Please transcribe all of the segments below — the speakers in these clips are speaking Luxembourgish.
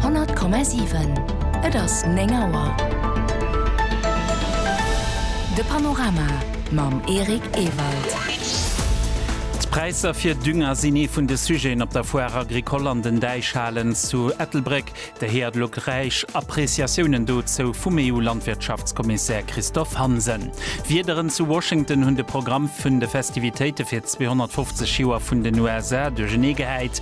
100,7 Et ass 9 Auer. De Panorama mam Eric Ewald. D'Präisser fir Dünger sinn ee vun de Sujeten op der Foire Agricole an den Däichhalen zu Ettelbréck. Der héiert elo d'räich Appreciatiounen dozou vum EU-Landwirtschaftskommissär Christophe Hansen. D'Wiederen zu Washington hunn de Programm vun de Festivitéite fir 250 Joer vun den USA duerchernee gehäit.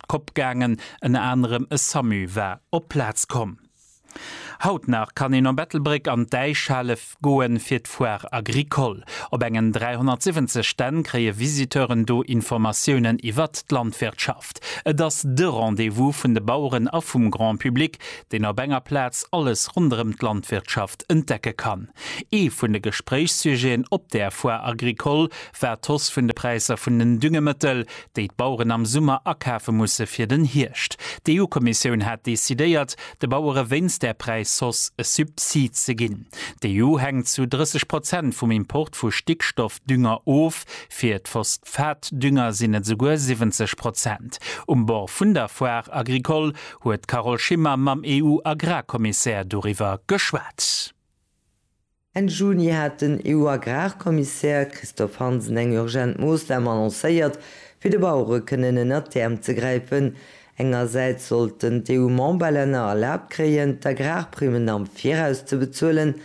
d'Kopp gaangen, ënner anerem e Samu war op d'Plaz komm. Haut nach kann een op Ettelbréck an d'Äischhalle goe fir d'Foire Agricole. Op engen 370 Stänn kréie Visiteuren do Informatiounen iwwert d'Landwirtschaft. Et ass de Rendez-vous vun de Baueren a vum Grand Public, deen op enger Plaz alles ronderëm d'Landwirtschaft entdecke kann. Ee vun de Gespréichssujeten op där Foire Agricole war d'Hausse vun de Präisser vun den Düngemëttel, déi d'Baueren am Summer akafe musse fir den Hierscht. D'EU-Kommissioun hat decidéiert, de Bauere wéinst där Präisshausse e Subsid ze ginn. D'EU hänkt zu 30 Prozent vum Import vu Stickstoffdünger of, fir d'Phosphatdünger sinn et esouguer 70 Prozent. Um Bord vun der Foire agricole huet d'Carole Schimmer mam EU-Agrarkommissär doriwwer geschwat. Enn Juni hat den EU-Agrarkommissär Christophe Hansen eng urgent Moossnam annoncéiert, fir de Bauere kënnen ënnert d'Äerm ze gräifen. Engersäits sollten d'EU-Memberlänner erlaabt kréien, d'Agrarprimmen am Viraus ze bezuelen.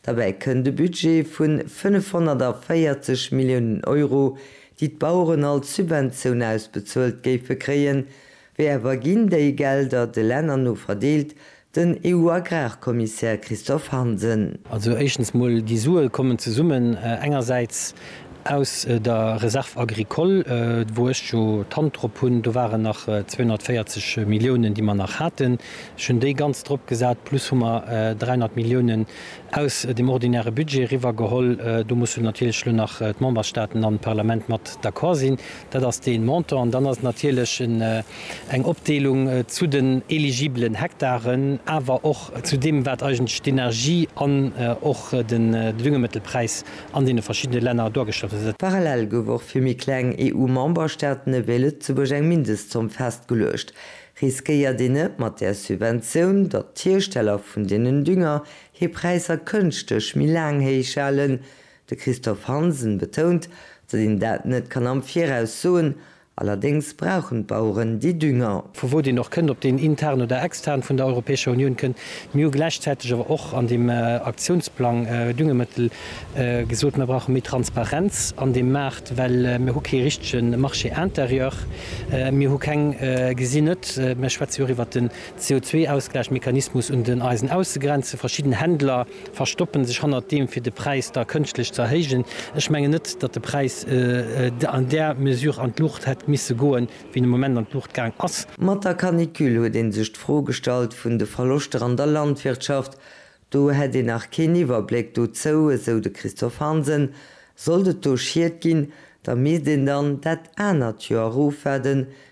Derbäi kënnt e Budget vu 540 Milliounen Euro, déi d'Baueren als Subventioun ausbezuelt géife kréien. Wéi awer ginn déi Gelder de Länner no verdeelt? Den EU-Agrarkommissär Christophe Hansen. Also éischtens mol, déi Sue kommen zesummen engersäits aus der Réserve agricole, wou ech jo d'Hand drop hunn, do waren nach 240 Milliounen, déi mer nach haten, ech hunn déi ganz drop gesat, plus hu mer 300 Milliounen aus dem ordinäre Budget eriwwer geholl. Do mussen natierlech elo nach d'Memberstaaten an d'Parlament mat d'accord sinn. Dat ass dee Montant. An dann ass et natierlech eng Opdeelung zu den eligibelen Hektaren, awer och zu deem, wat eigentlech d'Energie an och de Düngemëttelpräis an deene verschiddene Länner duergestallt huet. Parallel gouf och fir méi kleng EU-Memberstaaten ewéi Lëtzebuerg eng Mindestzomm festgeluecht. Riskéiert een net mat där Subventioun, datt d'Hiersteller vun deenen Dünger hir Präisser kënschteg méi laang héich halen, De Christophe Hansen betount, datt een dat net kann am Viraus soen, allerdéngs brauchen d'Baueren déi Dünger. vu wou deen och kënnt, ob deen intern oder extern vun der Europäescher Unioun kënnt. Mir hu gläichzäiteg awer och an deem Aktionsplang Düngemëttel gesot, mir brauche méi Transparenz an deem Maart, well mir hu kee richtege Marché intérieur, mir hu keng, gesinn net, mir schwätze jo och iwwert den CO2-Ausgläichmechanismus un den Eisen ausgegrenzt, verschidden Händler. verstoppen sech hannert deem, fir de Präis da kënschtlech ze erhéijen. Ech mengen net, datt de Präis an där Mesure an d'Luucht hätt misse goen, wéi en am Moment an d'Luucht gaang ass. Mat der Canicule huet ee sech d'Fro gestallt vun de Verloschter an der Landwirtschaft. Do hätt een nach keen Iwwerbléck dozou, esou de Christophe Hansen. Sollt et do Schied ginn, da misst een dann dat anert Joer erofwaarden,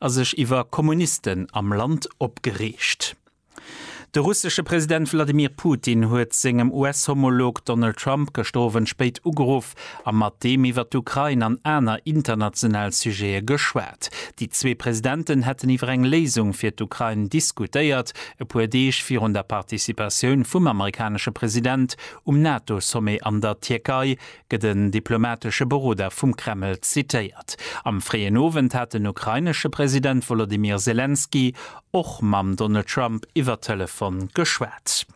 a sech iwwer Kommunisten am Land opgereegt. De russesche President Wladimir Putin huet sengem US-Homolog Donald Trump gëschter Owend spéit ugeruff a mat deem iwwer d'Ukrain an aner international Sujete geschwat. Déi zwee Presidenten hätten iwwer eng Léisung fir d'Ukrain diskutéiert, e puer Deeg virun der Participatioun vum amerikanesche President um NATO-Sommet an der Tierkei, gëtt en diplomatesche Beroder vum Kreml zitéiert. Am fréien Owend hat den ukrainesche President Wolodymyr Selenskyj och mam Donald Trump iwwer Telefon geschwat.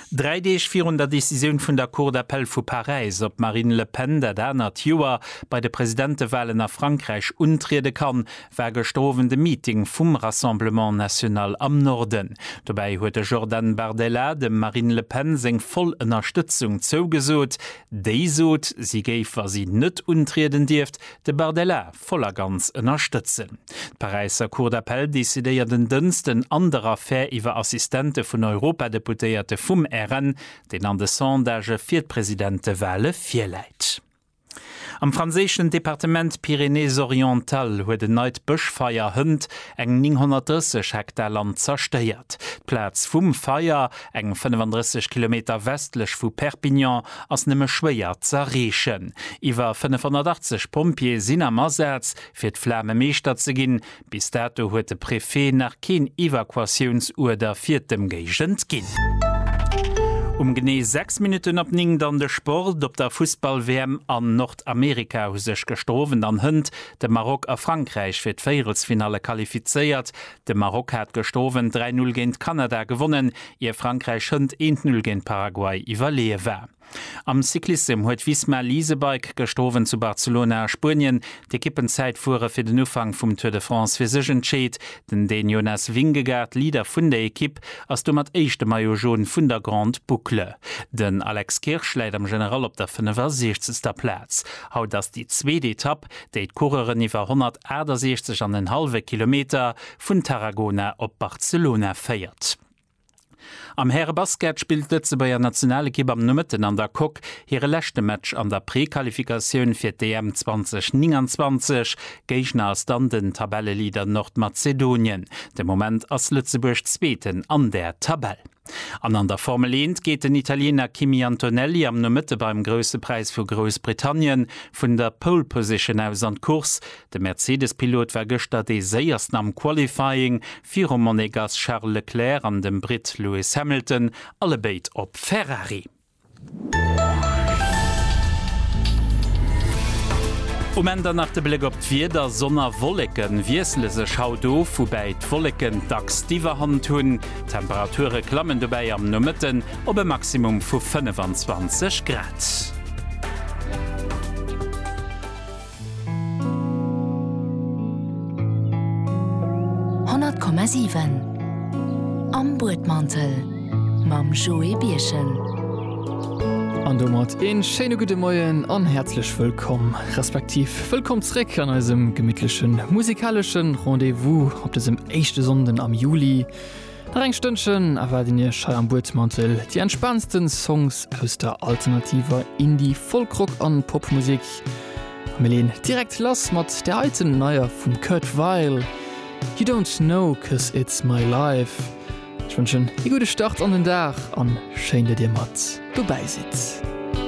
Dräi Deeg virun der Decisioun vun der Cour d'appel vu Paräis, ob d'Marine Le Pen dat anert Joer bei de Presidentewalen a Frankräich untriede kann, war gëschter Owend e Meeting vum Rassemblement National am Norden. Dobäi huet de Jordan Bardella dem Marine Le Pen seng voll Ënnerstëtzung zougesot. Déi sot, si géif, wa si net untrieden dierft, de Bardella voll a ganz ënnerstëtzen. D'Paräisser Cour d'appel decidéiert en Dënsten an der Affär iwwer Assistente vun Europadeputéierte vum RN, deen an de Sondagë fir d'Presidentewale virläit. Am franséischen Departement Pyrénées-Orientales huet en neit Bëschfeier hënt eng 930 Hektar Land zerstéiert. D'Plaz vum Feier, eng 35 Kilometer westlech vu Perpignan, ass nëmme schwéier z'erreechen. Iwwer 580 Pompjeeë sinn am Asaz, fir d'Flame meeschter ze ginn. Bis dato huet de Préfet nach keen Evakuatiounsuerder fir d'Ëmgéigend ginn. Um genee 6 Minutten op 9 dann de Sport. Op der Fussball-WM an Nordamerika hu sech gëschter Owend an Hënt de Maroc a Frankräich fir d'Véierelsfinalle qualifizéiert. De Maroc hat gëschter Owend 3, 0 géint Kanada gewonnen, ier Frankräich Hënt 1, 0 géint Paraguay iwwerleeë war. Am Cyclissem huet Visma Leasebike gëschter Owend zu Barcelona a Spuenien d'Ekippenzäitfuere fir den Ufank vum Tour de France fir sech entscheet. Den Dän Jonas Vingegaard, Leader vun der Ekipp, ass domat éischte Maillot Jaune vun der Grande Boucle. Den Alex Kirsch läit am General op der 65. Plaz. Haut ass déi zweet Etapp, déi d'Coureuren iwwer 168 an en hallwe Kilometer vun Tarragona op Barcelona féiert. Am Härebasket spillt d'Lëtzebuerger Nationalekipp am Nomëtten an der Coque hire leschte Match an der Prequalifikatioun fir d'EM 2029. Géigner ass dann den Tabelleleader Nordmazedonien. De Moment ass Lëtzebuerg Zweeten an der Tabell. An an der Formel Eent geet den Italiener Kimi Antonelli am Nomëtte beim Grousse Präis vu Groussbritannien vun der Pole Position aus an d'Course. De Mercedes-Pilot war gëschter dee séiersten am Qualifying, virum Monegass Charles Leclerc an dem Britt Lewis Hamilton, alle béid op Ferrari. Um Enn dann nach de Bléck op d'Wieder, Sonn a Wolleken wiessele sech haut of, woubäi d'Wolleken dacks d'Iwwerhand hunn. D'Temperature klammen dobäi am Nomëtten op e Maximum vu 25 Grad. Honnert Komma siwen Am Buedmantel mam Joé Birchen. An domat een schéine gudde Moien an häerzlech wëllkomm, respektiv wëllkomm zréck an eisem gemittlechen musikaleschen Rendez-vous op dësem éischte Sonnden am Juli. Nach eng Stënnchen erwaarden Iech hei am Buedmantel déi entspaansten Songs aus der alternativer Indie-, Folk-Rock an Popmusek. Mir leen direkt lass mat der heiten neier vum Kurt Vile, You don't know 'cause it's my life. Ech wënschen ee gudde Start an den Dag an schéin dat dir mat dobäi sidd.